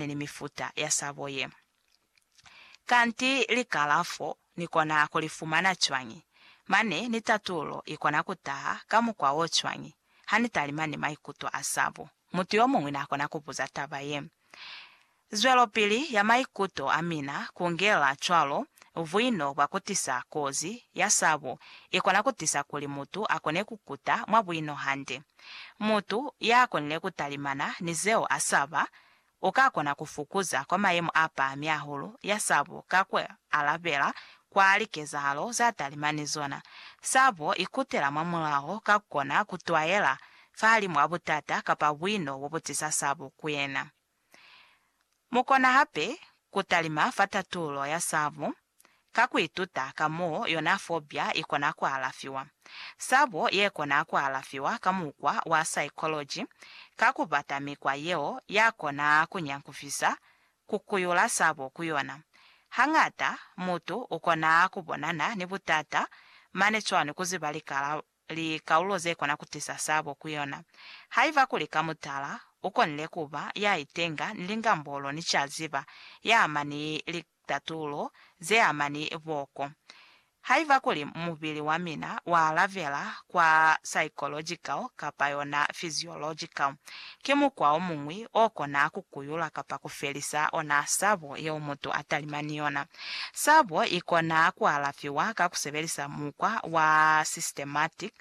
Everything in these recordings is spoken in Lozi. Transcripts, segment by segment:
ni ni mifuta ya sabo ye. Kanti likalafo ni kona ku li fumana cwañi, mane ni tatulo i kona ku taha ka mukwa wo cwañi ha ni talima ni maikuto a sabo? Mutu yo muñwi na kona ku buza taba ye. Zwelopili ya maikuto a mina ku ngela cwalo buino bwa ku tisa kozi ya sabo i kona ku tisa kuli mutu a kone ku kuta mwa buino hande. Mutu ya konile ku talimana ni zeo a saba u ka kona ku fukuza kwa mayemo a pahami hahulu ya sabo ka ku alabela kwa likezahalo za talimani zona. Sabo i kutela mwa mulaho ka ku kona ku twaela fahalimu a butata kapa buino bo bu tisa sabo ku yena. Mu kona hape ku talima fa tatulo ya sabo. ka ku ituta ka mo yona fobia i kona ku alafiwa, sabo ye kona ku alafiwa ka mukwa wa saikoloji ka ku bata mikwa yeo ya kona ku nyankufisa ku kuyula sabo ku yona. Hañata mutu u kona ku bonana ni butata mane cwani ku ziba lika la likaulo ze kona ku tisa sabo ku yona. Haiba kuli ka mutala, u konile ku ba ya itenga ni lingambolo ni ca ziba ya ama ni litatulo ze ama ni boko. Haiba kuli mubili wa mina wa alabela kwa psychological kapa yona physiological, Ki mukwa o muñwi o kona ku kuyula kapa ku felisa ona sabo yeo mutu a talima ni yona. Sabo i kona ku alafiwa ka ku sebelisa mukwa wa systematic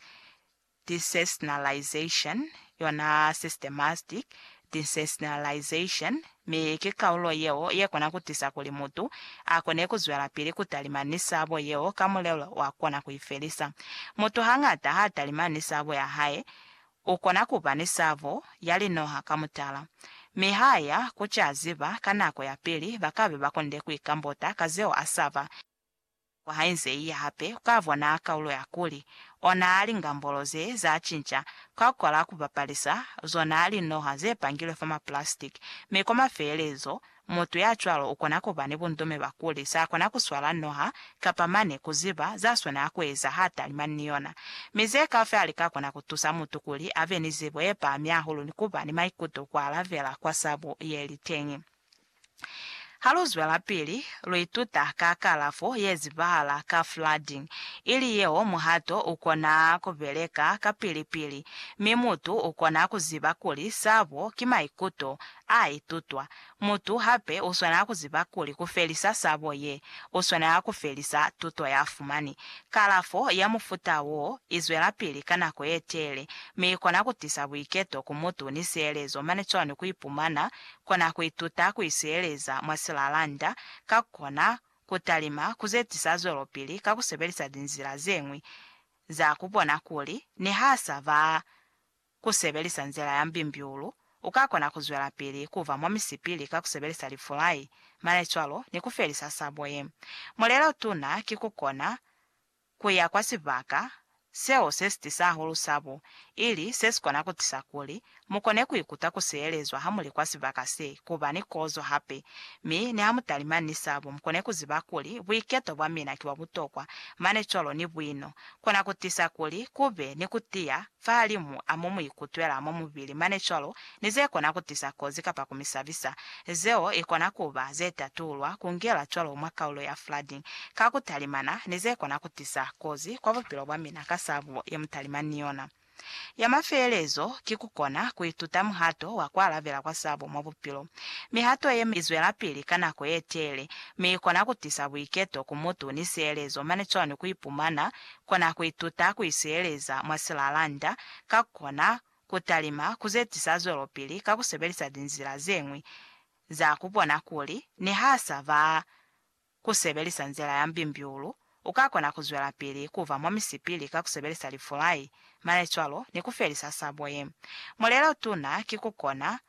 desensationalization, yona systematic desensationalization, mi ki kaulo yeo ye kona ku tisa kuli mutu a kone ku zwelapili ku talima ni sabo yeo ka mulelo wa kona ku i felisa. Mutu hañata ha talima ni sabo ya hae, U kona ku ba ni sabo ya linoha ka mutala, mi ha ya ku ca ziba ka nako ya pili ba ka be ba konde ku ikambota ka zeo a saba. Nako ha i nze i ya hape, u ka bona kaulo ya kuli ona lingambolo ze za cinca, kwa kwala ku bapalisa zona linoha ze pangilwe fa mapulasitiki, mi kwa mafelelezo Mutu ya cwalo ukona kuba ni bundume bwa kuli sa kona kuswala noha kapa mane kuziba za swanela kueza ha talima ni yona. Mi ze kafi hali ka kona kutusa mutu kuli abe ni zibo ye pahami hahulu ni kuba ni maikuto kwa alabela kwa sabu yeli teñi. Ha lu zwelapili, lu ituta ka kalafo ye zibahala ka flooding, ili yeo muhato ukona kubeleka kapili-pili, mi mutu ukona kuziba kuli sabo ki maikuto a itutwa. Mutu hape u swanela ku ziba kuli ku felisa sabo ye, u swanela ku felisa tuto ya fumani. Kalafo ya mufuta wo i zwelapili ka nako ye teele, mi i kona ku tisa buiketo ku mutu ni sielezo mane cwani ku ipumana kona ku ituta ku isieleza mwa silalanda, ka ku kona ku talima ku ze tisa zwelopili ka ku sebelisa linzila ze ñwi za ku bona kuli niha sa ba Ku sebelisa nzila ya mbimbiulu, u ka kona ku zwelapili ku ba mwa misipili ka ku sebelisa lifulai, malecwalo, ni ku felisa sabo ye. Mulelo tuna ki ku kona ku ya kwa sibaka seo se si tisa hahulu sabo, ili se si kona ku tisa kuli mu kone ku ikuta ku siyelezwa ha mu li kwa sibaka se, ku ba ni kozo hape, mi niha mu talimani ni sabo mu kone ku ziba kuli buiketo bwa mina ki bwa butokwa, malecwalo, ni buino kona ku tisa kuli ku be ni ku tiya fahalimu a mo mu ikutwela mwa mubili mane cwalo ni ze kona ku tisa kozi kapa ku mi sabisa, zeo i kona ku ba ze tatulwa ku ngela cwalo mwa kaulo ya flooding ka ku talimana ni ze kona ku tisa kozi kwa bupilo bwa mina ka sabo ye mu talimani ni yona. Ya mafelelezo ki ku kona ku ituta muhato wa ku alabela kwa sabo mwa bupilo. Mihato ye mi zwelapili ka nako ye teele, mi i kona ku tisa buiketo ku mutu ni sielezo mane cwalo ni ku ipumana kona ku ituta ku isiyeleza mwa silalanda, ka ku kona ku talima ku ze tisa zwelopili ka ku sebelisa linzila ze ñwi za ku bona kuli niha a sa ba ku sebelisa nzila ya mbimbiulu, u ka kona ku zwelapili ku ba mwa misipili ka ku sebelisa lifulai, malecwalo, ni ku felisa sabo ye. Mulelo tuna ki ku kona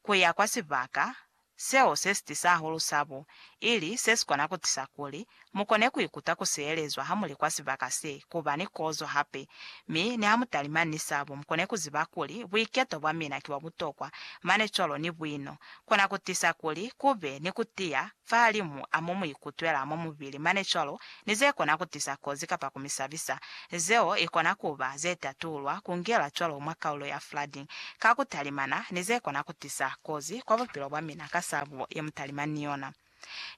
ku ya kwa sibaka seo se si tisa hahulu sabo, ili se si kona ku tisa kuli mu kone ku ikuta ku sielezwa ha mu li kwa sibaka se, ku ba ni kozo hape, mi niha mu talimani ni sabo, mu kone ku ziba kuli buiketo bwa mina ki bwa butokwa, mane cwalo ni buino, kona ku tisa kuli ku be ni ku tiya fahalimu a mo mu ikutwela mwa mubili mane cwalo ni ze kona ku tisa kozi kapa ku mi sabisa, zeo i kona ku ba ze tatulwa ku ngela cwalo mwa kaulo ya flooding ka ku talimana ni ze kona ku tisa kozi kwa bupilo bwa mina ka sabo ye mu talimani ni yona.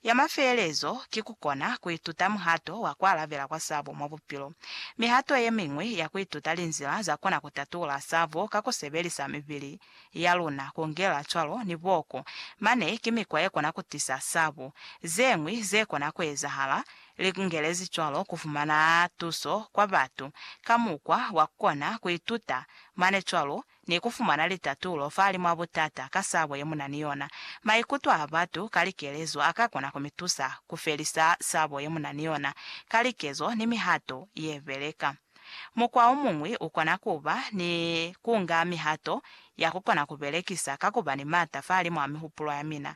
Ya mafelelezo ki ku kona ku ituta muhato wa ku alabela kwa sabo mwa bupilo. Mihato ye miñwi ya ku ituta linzila za kona ku tatula sabo ka ku sebelisa mibili. ya luna kungela cwalo ni boku, mane ki mikwa ye kona kutisa sabu. Zeñwi ze kona kuezahala, li kungelezi cwalo kufumana tuso kwa batu ka mukwa wa kukona kuituta mane cwalo ni kufumana litatulo fahali mwa butata ka sabo ye muna ni yona. Maikuto a batu ka likelezo a ka kona kumitusa kufelisa sabo ye muna ni yona ka likezo ni mihato ye beleka. Mukwa o muñwi u kona ku ba ni ku nga mihato ya ku kona ku belekisa ka ku ba ni m'ata fahalimw'a mihupulo ya mina.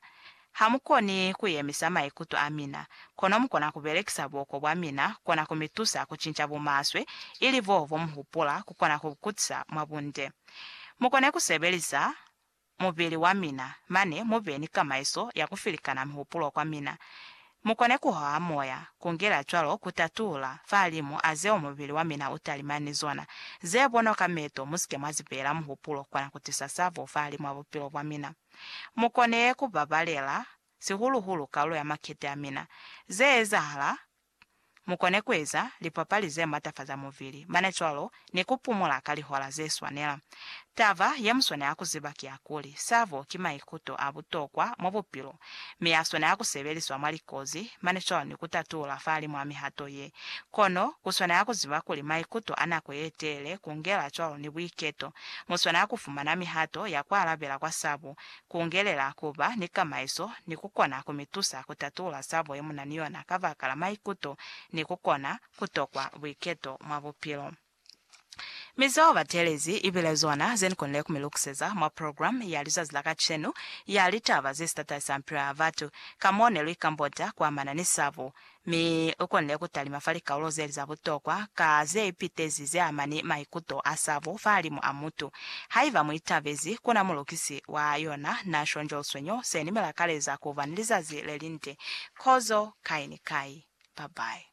Ha mu koni ku yemisa maikuto a mina, kono mu kona ku belekisa buoko bwa mina kona ku mi tusa ku cinca bumaswe ili boo bo mu hupula ku kona ku kutisa mwa bunde. Mu kone ku sebelisa mubili wa mina, mane mu be ni kamaiso ya ku filikana mihupulo kwa mina, mu kone ku hoha moya, ku ngela cwalo ku tatula, fahalimu a zeo mubili wa mina u talimani ni zona, ze bonwa ka meto, mu si ke mwa zi beela muhupulo, kona ku tisa sabo fahalimw'a bupilo bwa mina. Mu kone ku babalela, sihulu-hulu kalulo ya makete a mina, ze ezahala, Mu kone ku eza lipapali ze matafaza muvili, mane cwalo ni ku pumula ka lihola ze swanela. Taba ye mu swanela ku ziba ki ya kuli, sabo ki maikuto a butokwa mwa bupilo, mi a swanela ku sebeliswa mwa likozi, mane cwalo ni ku tatula fahalimw'a mihato ye. Kono, ku swanela ku ziba kuli maikuto a nako ye teele, ku ngela cwalo ni buiketo, mu swanela ku fumana mihato ya ku alabela kwa sabo Kungelela kuba ni kamaiso ni kukona kumitusa kutatula sabo yemuna ni yona kabakala maikuto ni kukona kutokwa buiketo mwa bupilo. Mi zeo batelezi ibile zona zenikonile kumilukuseza mwa program ya lizazi la kacenu ya litaba zesitatalisa mpilo ya batu, ka mo neluikambota kuamana ni sabo Mi u konile ku talima fa likaulo ze li za butokwa ka ze ipitezi ze ama ni maikuto a sabo fahalimu a mutu. Haiba mu itabezi, ku na Mulukisi wa yona na shonjolsweño se ni mi lakaleza ku ba ni lizazi le linde. Kozo, kai ni kai. Bye-bye.